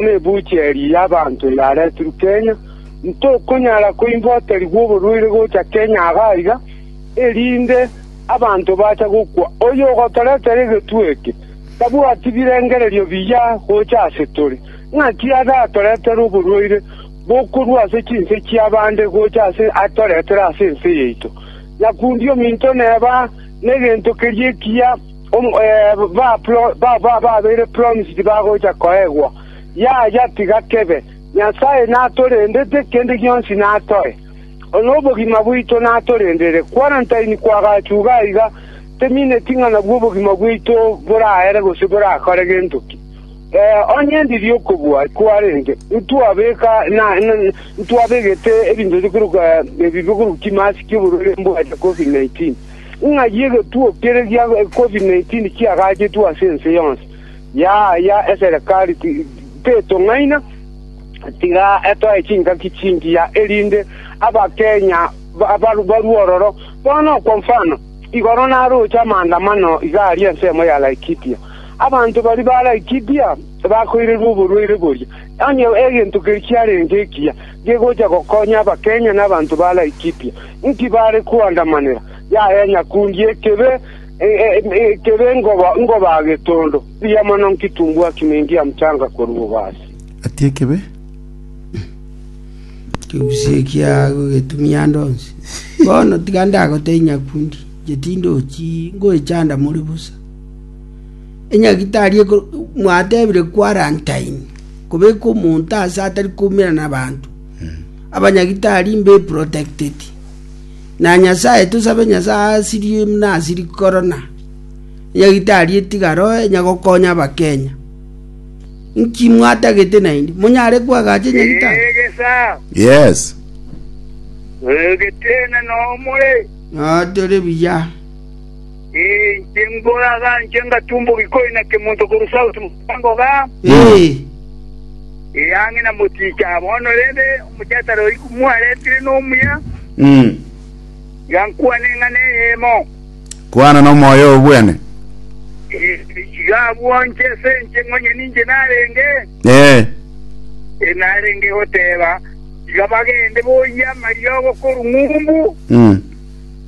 Nebuuchi eria y'abanto yaretirwe Kenya, ntokonyara koimboterigwa oborwaire gocha Kenya aaga aiga, erinde abanto bacha gokwa. Oyo ogotoretera egetwe eke tabwati birengererio biya gocha ase tore. Naki ere atoretere oborwaire bokorwa ase chinse chi'abande gocha ase atoretere ase ense yaito, nyakundi ominto neba negento keria ekiya. Ababeire promised bagocha koegwa, yaya, tiga kebe. Nyasae natorendete, kende gionsi natoe, nobogima bwaito natorendere. Quarantine kwagachuga aiga temineti ng'a nabwo obogima bwaito boraere gose borakore gento ki. Onye ndiri okobua kwarenge, ntwabegete ebinto bikorwa chimasiki oborware mbwate covid 19. Ng'ai egetuo kere gia covid-19 kiagachetwe ase ense yonsi yaaya eserekari tetong'aina, tiga etoe chingaki chingiya, erinde Abakenya barue ororo. Bono kwa mfano, igoro naroche amaandamano iga aria ensemo ya Laikipia, abanto baria ba Laikipia bakoirerwa oborwaire boria, onye egento keria kiarenge ekiya. gegocha gokonya Abakenya na abanto ba Laikipia, inki bare koandamanera? Yaya nyakundi ekebe, ekebe engoba ngoba getondo, mbuya mono nkitumbua kimingi ya mchanga koruboba ase. Ati ekebe kegusii ekiago getumia ande onsi. Bono tiga ndagotebie nyakundi, inche tindochii, ngoechanda more bosa. Enyagitari mwatebire kwarantaini kobeka omonto aase atari koumera nabanto. Abanyagitari mbe protected. Na Nyasaye tosabe Nyasaye asirie muna asiri korona. Enyagitari etiga roe enyagokonya abakenya. Nki mwatagete naindi? Monyare kwagacha enyagitari? Yes. Oyogetene nomore. Notore biya. Ee, inche mbore agaanche ngatumbogia koina kemonto korwa Sauti Mosango igaa. Ee, Ee, ang'e na moticha. Bono rende, omochesare oyi komwaretire nomuya, mm, iga nkwane ng'a neyemo. kwana nomoyo obwene. Ee, iga abwo inche ase inche ng'onye ninche narenge, Ee, ee, narenge goteba, iga bagende boyie amariogo korwa ng'umbu, mm,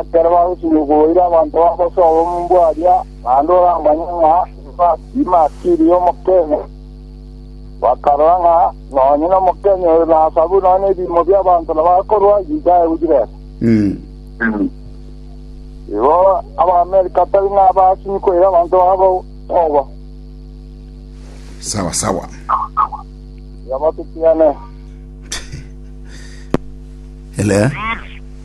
Ekero bagosibire koboira abanto ba bosa obomumbwa baria, naende oramanye ng'a timatiiri y'Omokenya, bakarora ng'a nonye n'Omokenya oyo nasabu nonya nebiimo bi'abanto nabo akorua Yuda aye gochia Resa. Igo Abaamerika tari nabasinyi koira abanto babo obo. Sawa sawa. Tiga batutigane. Elea.